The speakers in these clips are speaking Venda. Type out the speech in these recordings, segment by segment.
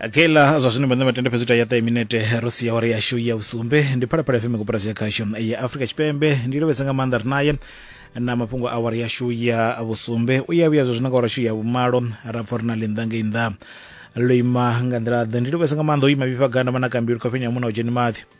okay la zwa zwino vhanna matende fhedzi ya ṱahe minete ro sia wari yashu ya vhusumbe ndi phalaphala fm koporasi ya khasho ya afrika tshipembe ndi lovhesa nga maanḓa ri naye na mafhungo a wari yashu ya vhusumbe u ya vhuya zwa zwino nga wari yashu ya vhumalo ra pfa uri na linḓa ngei nnḓa lo ima nga nḓila ḓe ndi lovhesa nga maanḓa o ima vhifha ganda vhana kambilu khofhenya muna u dzheni maḓi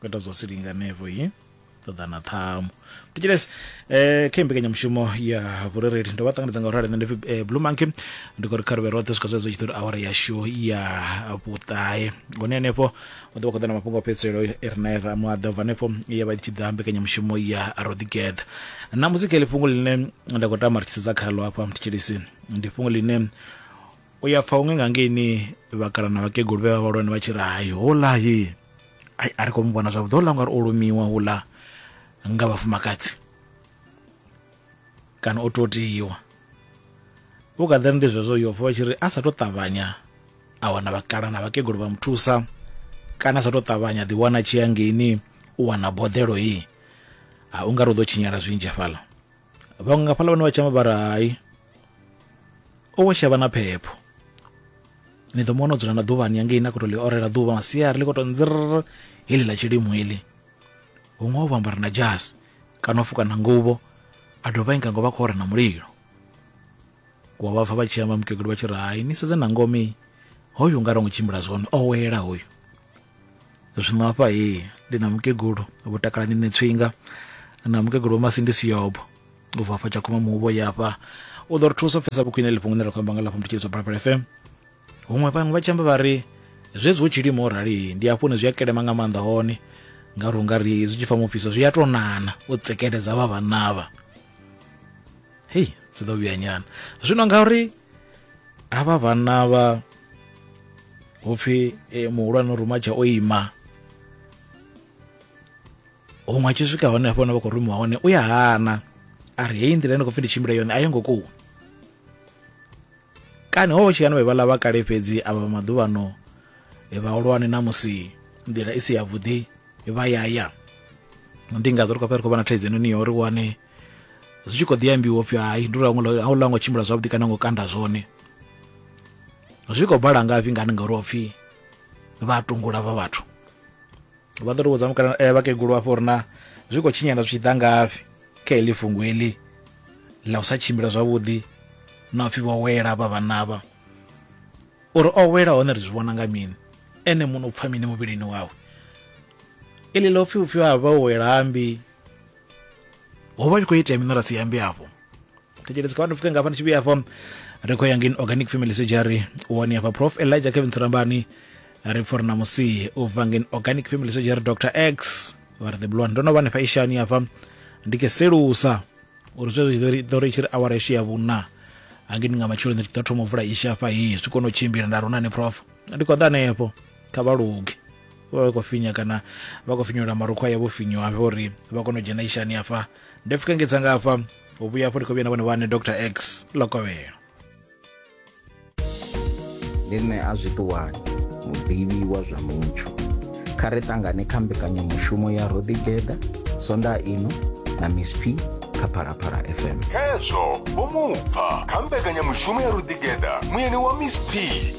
kweta zwa si linganevo yi ṱoḓa na ṱhamu thetshelesi eh kha mbekanyamushumo ya vhurereli ndo vha ṱanganedza nga u rali nṋe ndi eh, blue monkey ndi khou ri kha ri vhe roṱhe swika zwezwo tshi ḓo ri awara yashu ya vhuṱahe hone henefho u ḓo vha khou ḓa na mafhungo a fhedziselo i re nae ra muaḓa ubva henefho ya vha i tshi ḓa mbekanyamushumo ya roḓigeḓa na muzika ili fhungo ḽine nda khou tama ri tshi sedza khalo hafha thetshelesi ndi fhungo ḽine u ya pfa huṅwe nga ngeini vhakalana vhakegulu vhe vha vhalwane vha tshi ri hayi holahi ai a ri khou mu vhona zwavhuḓi houḽa ungari o lumiwa houḽa nga vhafumakadzi kana o totiwa u kha ḓiri ndi zwezwo yo vuwa tshi ri a sa tou ṱavhanya a wana vhakala na vhakegulu vha mu thusa kana a sa tou ṱavhanya ḓi wana tshi ya ngeini u wana boḓelo hei ha u nga ri u ḓo tshinyala zwinzhi hafhaḽa vhaṅwe nga fhaḽa vhane vha tshama vha ri hai o wo shavha na phepho ni ḓo muwana o dzula na ḓuvhani yangei na khou to ḽi orela ḓuvha masiari ḽi khou to nzirr heḽi ḽa tshilimo heḽi huṅwe o vhambara na jasi kana o fuka na nguvho a dovha inga ngo vha khou ora na mulilo wa vha pfa vha tshi amba mukegulu vha tshi ri hai ni sedze na ngome hoyu nga ro ngo tshimbila zwone o wela hoyu zwino hafha he ndi na mukegulu vho takalani ne tswinga na mukegulu wa masindi siyobo u bva hafha tshakhuma muhuvho yafha u ḓo ri thusa u pfesa vhukhwine ḽi fhungune ra khou amba nga lafha mutshitshedzwa balapala fm huṅwe vhaṅwe vha tshi amba vha ri zwezwi hu tshilimo o rali ndi hafho hune zwi a kelema nga maanḓa hone ngauri unga ri zwi tshi fa mufhiso zwi a tou nana u tsekeledza vha vhanavha hei dzi ḓo vhuya nyana zwino ngauri havha vhanna vha hupfi e, muhulwane rumatsha o ima huṅwe a tshi swika hone hafho hone vha khou rumiwa hone u ya hana a ri heyi nḓila ndi khou pfi ndi tshimbile yone a yo ngo kuwa kani ho tshi yana vhevhala vha kale fhedzi a vha maḓuvhano e, vhahulwane na musi nḓila i si yavhuḓi vha yaya ndi nga ḓo ri khou fha ri khou vha na thaidzo noni ya uri wane zwi tshi khou ḓi ambiwa upfhi hai ndi uri a u ḽa ngo tshimbila zwavhuḓi kana ngo kanda zwone zwi khou bala ngafhi ngani ngauri ho pfhi vha tungula vha vhathu vha ḓo to vhudza mukala eh, vhakegulu afho uri na zwi khou tshinyala zwi tshi ḓa ngafhi kha heḽi fhungo heḽi ḽa u sa tshimbila zwavhuḓi na upfhi vho wela vha vhanavha uri o wela hone ri zwi vhona nga mini ene muno u pfha mini muvhilini wawe iḽi ḽo pfhi upfhi ha vha wela ambi ho vha tshi khou itea mini ra si ambe afho thetshelesi kha vha ndi pfuke ngafha ndi tshi vhuya afho ri khou ya ngeni organic family surgery wone hafha prof elijah kevin tsirambani ri pfha uri na musi u bva ngeni organic family surgery dr x vha ri the blond ndo no vha nefha ishani hafha ndi ke selusa uri zwezwo zwi ḓo ri tshi ri awara ishu ya vhuna hangei ndi nga matsheloni ndi ḓo thoma u vula isha hafha hii zwi kone u tshimbila nda ri hu na ni prof ndi khou ḓa hanefho kha vha luge vha vha khou finya kana vha khou finyola marukhu aya vho finyiwa hafha uri vha kone u dzhena ishani hafha nda pfuka ngedza nga hafha u vhuya hafho ndi khou vhuya na vhone vhane dr x lokovhelo ndi nṋe a zwiṱuwani muḓivhi wa zwa mutsho kha ri ṱangane kha mbekanyamushumo ya rodigeda sonda ino na miss p kha phalaphala fm khezwo vho mupfa kha mbekanyamushumo ya ruḓigeda muyeni wa miss p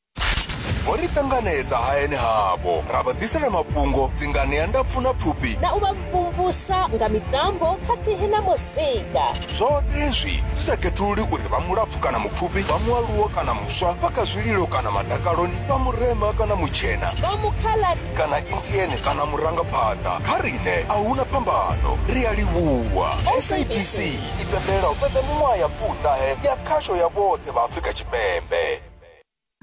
vho ri ṱanganedza hayani havho ra vha ḓisela mafhungo dzingani ya ndapfu na pfufhi na u vha mvumvusa nga mitambo khathihi na muzika zwoṱhe hezwi zwi sa khethululi uri vha mulapfu kana mupfufhi vha mualuwo kana muswa vha kha zwililo kana madakaloni vha murema kana mutshena vha mukhaladi kana indiene kana murangaphanḓa kha riṋe a huna phambano ri a livhuwa sabc i pembela u fhedza miṅwaha ya pfuṱahe ya khasho ya vhoṱhe vha afrika tshipembe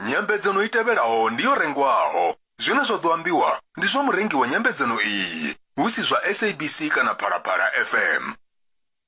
Nyambedzano i tevhelaho ndi yo rengwaho. Zwine zwa ḓo ambiwa ndi zwa murengi wa nyambedzano iyi, hu si zwa SABC kana Phalaphala FM.